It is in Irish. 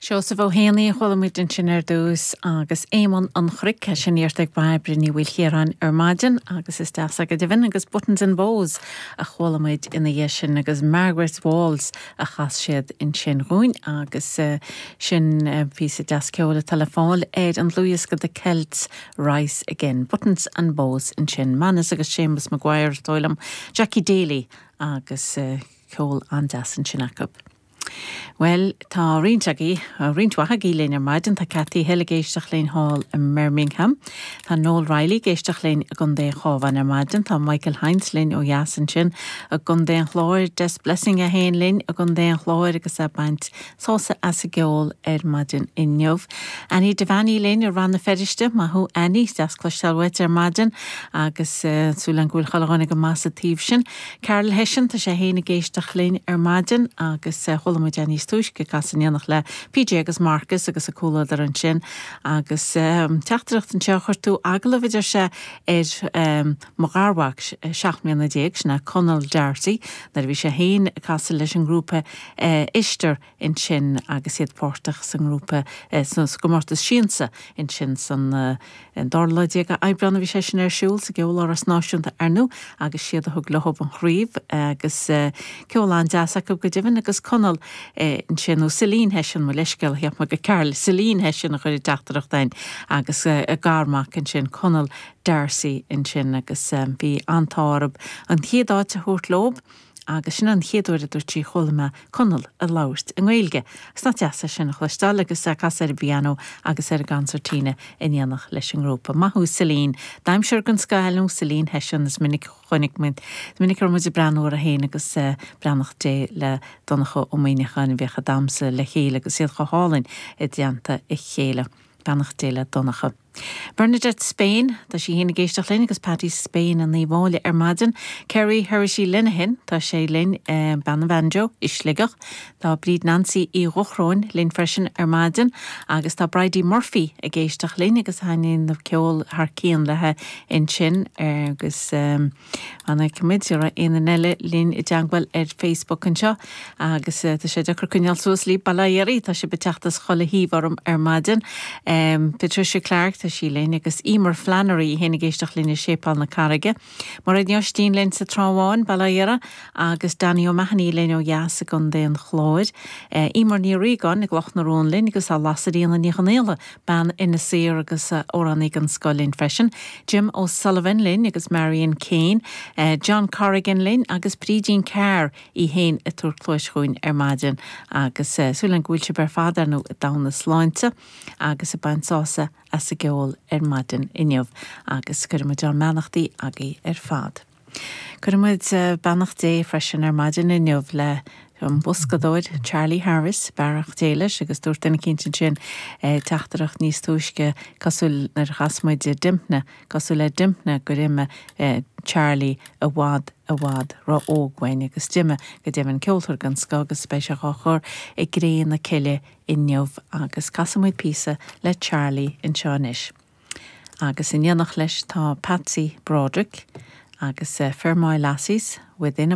Seosamh Ó hÉanaí a chuala muid ansin ar dtús agus Éamonn an Chnoic, sin iarrta ag Bairbre Ní Mhaoilchiaráin ar maidin agus is deas é go deimhin, agus Buttons and Bows a chuala muid ina dhiaidh sin agus Margaret's Waltz a chas siad ansin dhúinn agus sin píosa deas ceoil atá le fáil ar an dlúthdhiosca The Celts Rise Again, Buttons and Bows ansin, Manus agus Séamus McGuire is dóigh liom, Jackie Daly agus. Ceol an-deas ansin acu. Bhuel, tá roinnt agaibh, roinnt mhaith agaibh linn ar maidin. Tá Cathy Hill ag éisteacht linn thall i mBirmingham. Tá Noel Reilly ag éisteacht linn i gContae an Chábháin ar maidin. Tá Michael Hinds linn ó dheas ansin i gContae an Chláir. Des Blessing é féin linn i gContae an Chláir agus é ag baint sásamh as an gceol ar maidin inniu. Annie Devaney linn i Rann na Feiriste. Maith thú Annie. Deas cloisteáil uait ar maidin agus súil agam go bhfuil chuile dhuine go maith sa taobh sin. Carl Hession, tá sé fhéin ag éisteacht linn ar maidin agus chuala muid é níos túisce ag casadh in éineacht le PJ agus Marcus agus a comhluadar ansin agus teachtaireacht anseo a chuir tú, agallamh a deir sé ar mo gharmhac seacht mbliana déag, sin é Conall D'Arcy, nuair a bhí sé féin ag casadh leis an ngrúpa Ishtar ansin agus iad páirteach sa ngrúpa, sa gcomórtas Siansa ansin san, an dara lá déag de Aibreán a bhí sé sin ar siúl sa gCeoláras Náisiúnta ar ndú agus is iad a thug leob an chraobh agus ceol an-deas acu go deimhin agus Conall ansin, nó Celine Hession, mo leithscéal, cheap mé gur Carl, Celine Hession a chuir an teachtaireacht a'inn agus a garmhac ansin Conall D'Arcy ansin agus bhí an t-ádh orab an chéad áit a thabhairt leob agus sin an chéad uair a dúirt sí chuala mé Conall ag labhairt i nGaeilge. Agus nach deas é sin a chloisteáil agus é ag casadh ar an bpianó agus ar an gcansairtína in éineacht leis an ngrúpa. Maith thú Celine. Damhsóir den scoth eile thú Celine Hession, is minic a chonaic muid, is minic a bhí muid ag breathnú uirthi féin agus beannacht Dé le Donncha Ó Muíneacháin a bhíodh ag damhsa le chéile agus iad chomh hálainn i dteannta a chéile. Beannacht Dé le Donncha. Bernadette Spain, tá sí fhéin ag éisteacht linn agus Patty Spain in Uíbh Fhailí ar maidin, Kerry Herity Lenihan, tá sé linn i Béal Átha an Mhóta i Sligeach, tá Bríd Nancy Uí Dhochróin linn freisin ar maidin agus tá Bridie Murphy ag éisteacht linn agus ag déanamh ceol thar cionn léithe ansin agus. An bhfeicfimid an raibh éinne eile linn i dteangmháil ar Facebook anseo agus tá sé deacair coinneáil suas libh bail ó Dhia oraibh tá sibh ag teacht as chuile thaobh orm ar maidin. Patricia Clarke, tá sí linn, agus Eimear Flannery, í fhéin ag éisteacht linn i Séipéal na Carraige. Mairéad Ní Oistín linn sa Trá Bháin, bail ó Dhia uirthi, agus Danny O'Mahony linn ó dheas i gCondae an Chláir. Eimear Ní Riagáin i gCloch na Rón linn agus tá Lasairfhíona Ní Chonaola, bean an-aoibhinn í agus amhránaí den scoth linn freisin, Jim O'Sullivan linn agus Marian Kane, John Corrigan linn agus Brídín Carr í fhéin ag tabhairt cluas dhúinn ar maidin agus súil a'm go bhfuil sibh ar fad i dtogha na sláinte agus ag baint sásamh as an gceol ar maidin inniu agus cuirfidh muid ár mbeannachtaí agaibh ar fad. Cuirfidh muid beannacht Dé freisin ar maidin inniu leis an mboscadóir Charlie Harris, beannacht Dé leis, agus dúirt duine eicínt ansin teachtaireacht níos túisce cosúil nuair a chas muid i Dympna, cosúil le Dympna, gur imigh Charlie i bhfad, i bhfad ró-óg uainn agus d'imigh, go deimhin, ceoltóir den scoth agus beidh sé dhá chur i gcré na cille inniu agus casfaidh muid píosa le Charlie anseo anois. Agus in éineacht leis tá Patsy Broderick agus The Fermoy Lassies, Within a.